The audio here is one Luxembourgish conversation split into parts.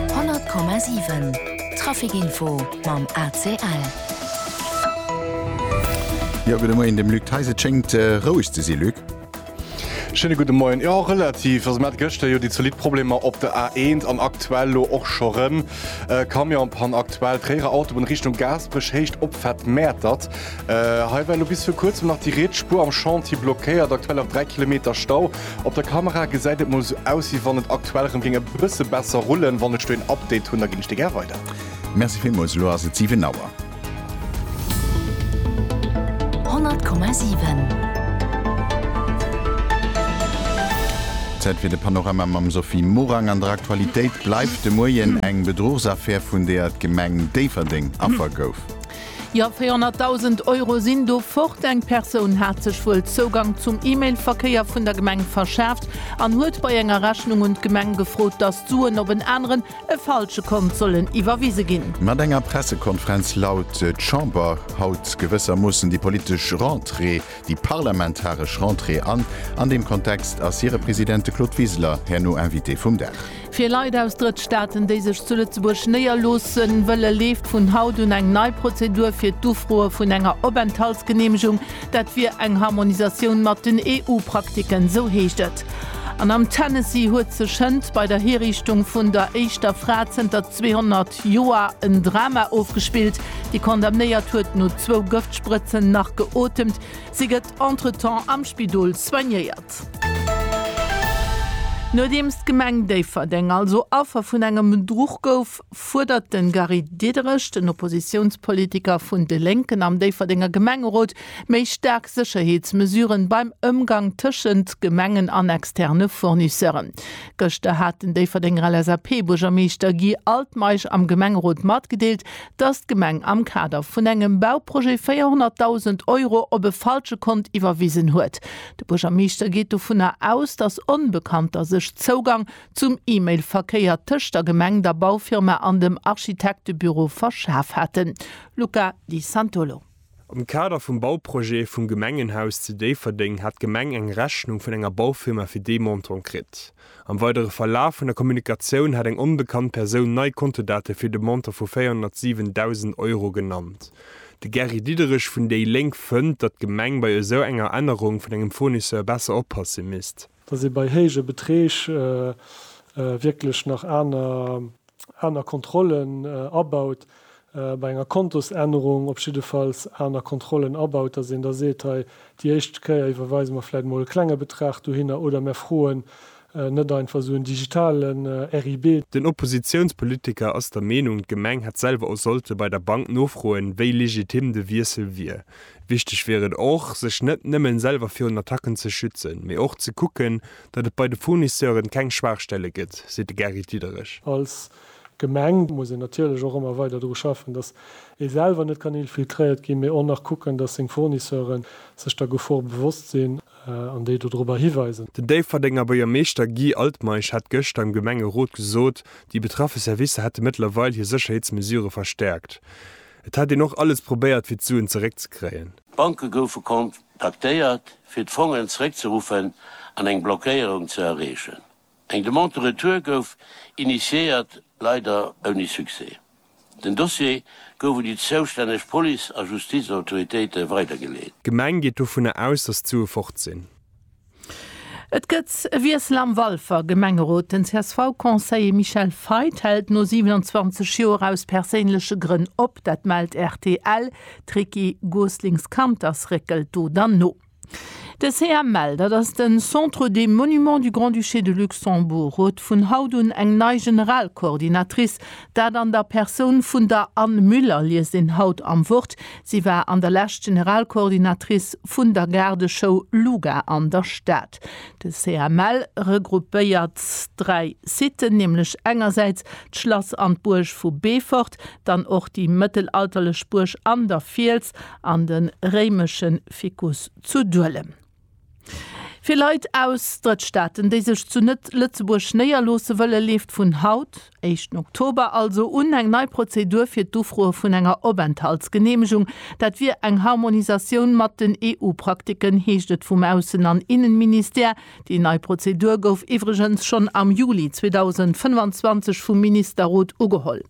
100,7 Traficinfo mam ACL. Jo gudde Moien, dem Luc Theis. Et schéngt roueg ze si, Luc. Schéine gudde Moien. Jo, relativ. Also mir hate gëschter jo déi zolidd Problemer op der A1 an aktuell elo och scho rëm. Camionspann aktuell, Tréierer Autobunn Richtung Gaasperech, Héicht Opfahrt Mäertert. Hei war elo bis viru kuerzem nach déi riets Spuer am Chantier blockéiert, aktuell nach 3 Kilometer Stau. Op der Kamera gesäit et mol sou aus wéi wann et aktuell rem géing e bësse besser rullen. Wann ech do een Update hunn da ginn ech dir gär weider. Merci villmools, elo ass et 7 Auer. 100,7. Zäit fir de Panorama mam Sophie Morang an der Aktualitéit bleift de Moien eng Bedruchsaffär vun deeër d'Gemeng Déifferdeng Affer gouf. Jo, 400.000 Euro sinn do fort. Eng Persoun hat sech wuel Zougang zum E-Mail-Verkéier vun der Gemeng verschaaft an huet bei enger Rechnung un d'Gemeng gefrot, dass d'Suen op en aneren, e falsche Kont sollen iwwerwise ginn. Mat enger Pressekonferenz laut d'Chamber haut gewëssermoossen déi politesch Rentrée. déi parlamentaresch Rentrée an. An deem Kontext ass hire President, de Claude Wiseler, herno Invité vum Dag. Fir Leit aus Drëttstaaten, déi sech zu Lëtzebuerg néierloosse wëlle, leeft vun haut un eng nei Prozedur fir d'Ufroe vun enger Openthaltsgeneemegung. Dat wier eng Harmonisatioun mat den EU-Praktiken, sou heescht et. An am Tennessee huet sech hënt bei der Hiriichtung vun der éischter Fra zënter 200. August Joer en Drama ofgespillt. Déi Condamnéiert huet no zwou Gëftsprëtzen nach geotemt. Si gëtt entretemps am Spidol soignéiert. Nodeems d'Gemeng Déifferdeng also Affer vun engem Bedruch gouf, fuerdert de Gary Diderich, den Oppositiounspolitiker vun de Lénken am Déifferdenger Gemengerot, méi staark Sécherheetsmesuren beim Ëmgang tëschent Gemengen an externe Fournisseuren. Gëschter hat den Déifferdenger LSAP-Buergermeeschter Guy Altmeisch am Gemengerot matgedeelt, datt d'Gemeng am Kader vun engem Bauprojet 400.000 Euro op e falsche Kont iwwerwisen huet. De Buergermeeschter geet dovunner aus, datt Onbekannter sech Zougang zum E-Mail-Verkéier tëscht der Gemeng, der Baufirma an dem Architektebüro verschaf haten. Luca Di Santolo. Am Kader vum Bauprojet vum Gemengenhaus zu Déifferdeng hat d'Gemeng eng Rechnung vun enger Baufirma fir dee Montant kritt. Am weidere Verlaf vun der Kommunikatioun hat eng onbekannt Persoun nei Kontodate fir de Montant vu 407.000 Euro genannt. De Gary Diderich vun déi Lénk fënnt, datt d'Gemeng bei esou enger Ännerung vun engem Fournisseur besser oppasse misst. dass ee bei héije Beträg wierklech nach aner Kontrollen abaut, bei enger Kontosännerung op jiddefalls aner Kontrollen abaut, dass een da seet, hei déi éischt Kéier iwwerweise mer vläicht emol e klenge Betrag dohinner oder mer froen net einfach esou en digitalen RIB. Den Oppositiounspolitiker ass der Meenung, d'Gemeng hätt selwer och sollte bei der Bank nofroen, wéi legitim de Wiessel wier. Wichteg wier et och, sech net nëmmen selwer virun Attacken ze schützen, mee och ze kucken, datt et bei de Fournisseuren keng Schwaachstelle gëtt, seet de Gary Diederich. Als Gemeng muss een natierlech och ëmmer weider dru schaffen, datt ee selwer net kann infiltréiert ginn, mee och nach kucken, datt seng Fournisseuren sech der Gefor bewosst sinn an déi dodrobber hiweisen. Den Déifferdenger Buergermeeschter Guy Altmeisch hat gëschter am Gemengerot gesot, déi betraffe Servicer hätte mëttlerweil hir Sécherheetsmesure verstäerkt. Et hätt een och alles probéiert fir d'Suen zeréckzekréien. D'Banke goufe kon taktéiert fir d'Fongen zeréckzeruffen an eng Blockéierung ze erreechen. Eng Demande de retour gouf initiéiert, leider ouni Succès. Den Dossier gouf un déi zoustänneg Police a Justizautoritéite weidergeleet. D'Gemeng geet dovunner aus, datt d'Sue fort sinn. Et gëtt e Wiessel am Walfer Gemengerot. Den CSV-Conseiller Michel Feith hält no 27 Joer aus perséinleche Grënn op. Dat mellt rtl. D'Ricky Goslings-Kanters réckelt do dann no. De CML, dat ass de Centre des Monuments du Grand-Duché de Luxembourg, huet vun haut un eng nei Generalcoordinatrice. Dat an der Persoun vun der Anne Müller, liest een haut am Wort. Si war an der Lescht Generalcoordinatrice vun der Gaardeschoul Luga an der Stad. De CML regroupéiert dräi Siten, nämlech engersäits d'Schlass an d'Buerg vu Beefort, dann och déi mëttelalterlech Buerg An der Fiels an de réimesche Vicus zu Duelem. Fir Leit aus Drëttstaaten, déi sech zu Net-Lëtzebuerg néierloosse wëllen, leeft vun haut, éischten Oktober also, un eng nei Prozedur fir d'Ufroe vun enger Openthaltsgeneemegung. Dat wier eng Harmonisatioun mat den EU-Praktiken, heescht et vum Aussen an Innenministère. Déi nei Prozedur gouf iwwregens schonn am Juli 2025 vum Ministerrot ugeholl.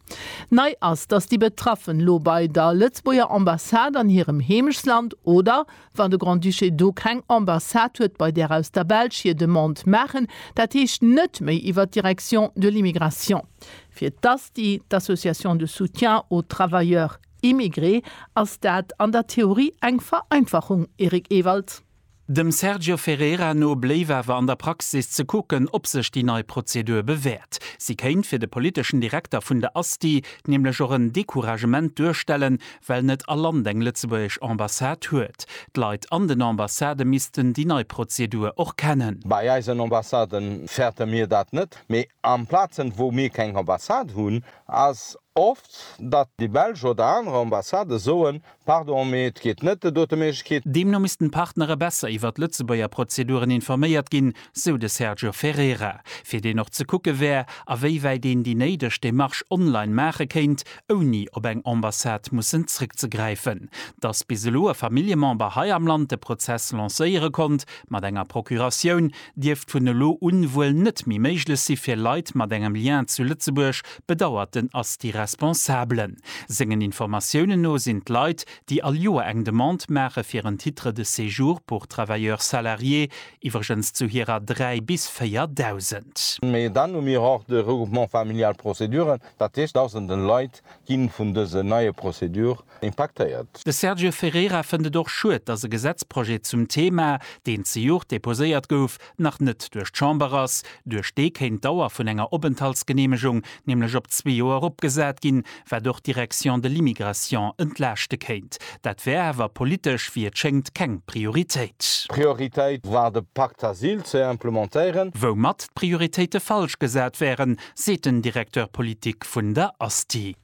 Nei ass, datt déi Betraffen elo bei der Lëtzebuerger Ambassade an hirem Heemechtsland oder, Wann de Grand-Duché do keng Ambassade huet bei där aus der Belsch hir Demande maachen, dat heescht net méi iwwer d'Direction de l'immigration, fir d'ASTI, d'Association de soutien aux travailleurs immigrés, ass dat an der Theorie eng Vereinfachung, Eric Ewald. Dem Sergio Ferreira no bléif awer an der Praxis ze kucken, ob sech déi nei Prozedur bewäert. Si kéint fir de politeschen Direkter vun der ASTI nämlech och en Decouragement duerstellen, well net all Land eng lëtzebuergesch Ambassade huet. D'Leit an den Ambassadë missten déi nei Prozedur och kennen. Bei eisen Ambassade fäerte mir dat net, mee an Plazen, wou mir keng Ambassade hunn, ass oft, datt déi belsch oder aner Ambassadë soen, Pardon, mee et geet net, et huet e Méiglechkeet. Deemno missten d'Partnere besser iwwert d'Lëtzebuerger Prozeduren informéiert ginn, sou de Sergio Ferreira, fir deen och ze kucke wär, awéiwäit een déi néideg Demarche online maache kéint, ouni op eng Ambassade mussen zréckzegräifen. Datt bis elo e Familljemember hei am Land de Prozess lancéiere konnt mat enger Procuratioun, dierft vun elo un wuel net méi méiglech si fir Leit mat engem Lien zu Lëtzebuerg, bedauert den Asti Responsable. Sengen Informatiounen no sinn d'Leit, déi all Joer eng Demande maache fir en Titre de séjour pour travailleur salarié, Iwwregens zu hirer 3 bis 4 Dausend. Mee dann hu mir och de Regroupement familial Prozeduren, dat heescht Dausenden Leit ginn vun dësen neie Prozedur impaktéiert. De Sergio Ferreira fënnt et och schued, dass e Gesetzprojet zum Thema, deen zejoert deposéiert gouf, nach net duerch d'Chamber ass. Duerch dee kéint d'Dauer vun enger Openthaltsgeneemegung nämlech op zwee Joer eropgesat ginn, wat och d'Direction de l'immigration entlaaschte kéint. Dat wär awer politesch, wéi et schéngt, keng Prioritéit. Prioritéit war de Pacte Asyl ze implementéieren. Woumat d'Prioritéite falsch gesat wären, seet den Directeur politique vun der ASTI.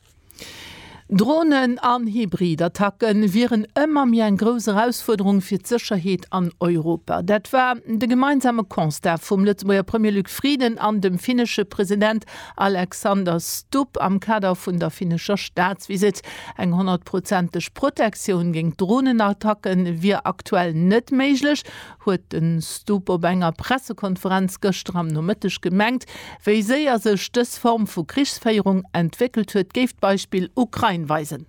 Dronen an Hybridattacke wieren ëmmer méi eng grouss Erausfuerderung fir d'Sécherheet an Europa. Dat war de gemeinsame Constat vum Lëtzebuerger Premier Luc Frieden an dem finnesche President Alexander Stubb am Kader vun der finnescher Staatsvisitt. Eng honnertprozenteg Protektioun géint Dronenattacke wier aktuell net méiglech, huet de Stubb op enger Pressekonferenz gëschter am Nomëtteg gemengt. Wéi séier sech dës Form vu Krichsféierung entwéckelt huet, géif d'Beispill Ukrain weisen.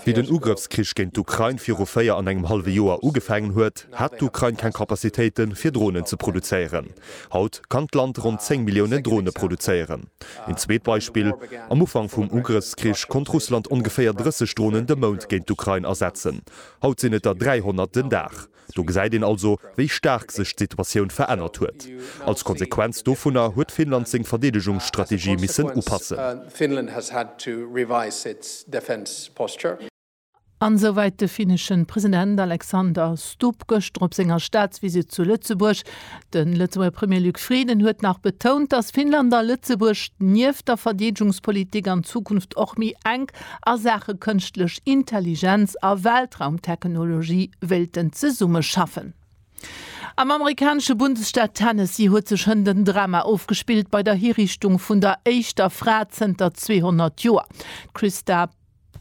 Wéi den Ugrëffskrich géint d'Ukrain viru véier an engem hallwe Joer ugefaangen huet, hat d'Ukrain keng Capacitéite fir Dronen ze produzéieren. Haut kann d'Land ronn 10 Milliounen Drone produzéieren. Een zweet Beispill, Am Ufank vum Ugrëffskrich konnt Russland ongeféier 30 Dronen de Mount géint d'Ukrain asetzen. Haut sinn et der 300 den Dag. Do gesäit een also, wéi staark sech d'Situatioun verännert huet. Als Konsequenz dovunner huet Finnland seng Verdeedegungsstrategie missen upassen. An esou wäit de finneschen President Alexander Stubb gëschter op senger Staatsvisite zu Lëtzebuerg. De Lëtzebuerger Premier Luc Frieden huet nach betount, datt Finnland a Lëtzebuerg nieft der Verdeedegungspolitik an Zukunft och méi enk a Saache Kënschtlech Intelligenz a Weltraumtechnologie wéilten zesummeschaffen. Am amerikanesche Bundesstaat Tennessee huet sech hënt en Drama ofgespillt bei der Hiriichtung vun der éischter Fra zënter 200 Joer. D'Christa.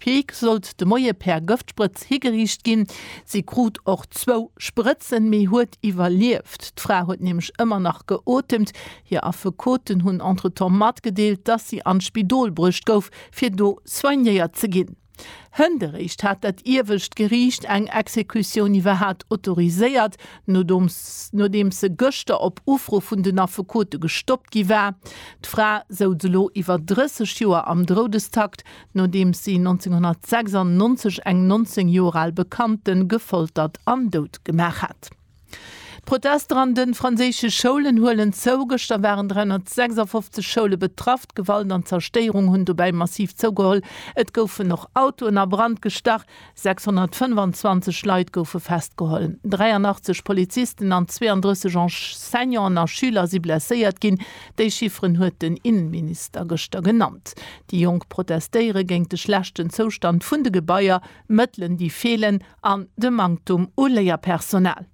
Peek sollt de Moie per Gëftsprëtz higeriicht ginn. Si krut och zwou Sprëtzen, mee huet iwwerlieft. D'Fra huet nämlech ëmmer nach geotemt. Hir Affekoten hunn entretemps matgedeelt, dass si an d'Spidol bruecht gouf, fir do soignéiert ze ginn. Hënt eréischt hat dat iewescht Geriicht eng Exekutioun iwwerhat autoriséiert, nodeems se gëschter op Ufro vun den Affekote gestoppt gi war. D'Fra souz elo iwwer 30 Joer am Droudestakt. nodeems si 1996 eng 19 Joer al Bekannte gefoltert an dout gemaach hat. D'Protester an de franséische Schoulen huelen zou, Gëschter waren 356 Schoule betraff. D'Gewalt an d'Zerstéierung hunn dobäi massiv zougeholl, et goufen och Autoen a Brand gestach. 625 Leit goufe festgeholl, 83 Polizisten an 32 Enseignanten a Schüler si blesséiert ginn. Déi Chifferen huet den Innenminister gëschter genannt. Déi Jonk protestéiere géint de schlechten Zoustand vun de Gebaier, Mëttelen déi feelen an de Manktum u Léierpersonal.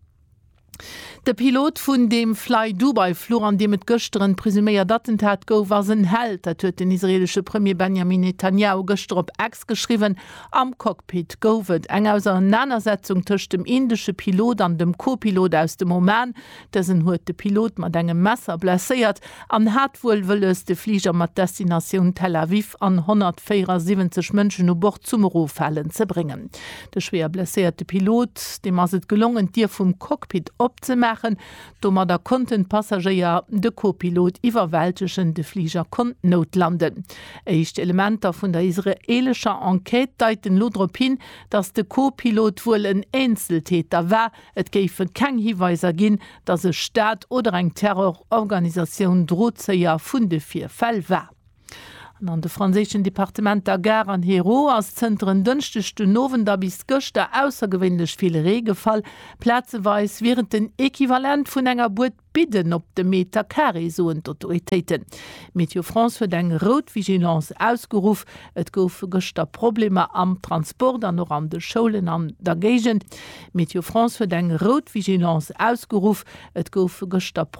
De Pilot vun deem Flydubai-Fluch, an deem et gëschter en presuméiert Attentat gouf, ass en Held. Dat huet den israeelesche Premier Benjamin Netanjahu gëschter op X geschriwwen. Am Cockpit gouf et eng Auserenanersetzung tëscht dem indesche Pilot an dem Co-Pilot aus dem Oman. Dësen huet de Pilot mat engem Messer blesséiert an hat wuel wëlles, de Fliger mat Destinatioun Tel Aviv an 174 Mënschen u Bord zum Eroffalen ze bréngen. De schwéier blesséierte Pilot, deem ass et gelongen, d'Dier vum Cockpit opzemaachen. Domadder konnten d'Passagéier de Co-Pilot iwwerwältegen, de Fliger konnt noutlanden. Éischt Elementer vun der israeelescher Enquête deiten elo drop hin, datt de Co-Pilot wuel en Eenzeltäter war. Et géife keng Hiweiser ginn, datt e Staat oder eng Terrororganisatioun Drozéier vun de Virfäll war. An de franséischen Departementer Gard an Hérault ass zënter en Dënschdeg den Owend a bis gëschter aussergewéinlech vill Ree gefall. Plazeweis wier et den Equivalent vun enger Bued Bidden op de Meter Carré, soen d'Autoritéiten. Météo France huet eng rout Vigilance ausgeruff. Et goufe gëschter Problemer am Transport an och an de Schoulen an der Géigend. Météo France huet eng rout Vigilance ausgeruff. Et goufe gëschter Problemer.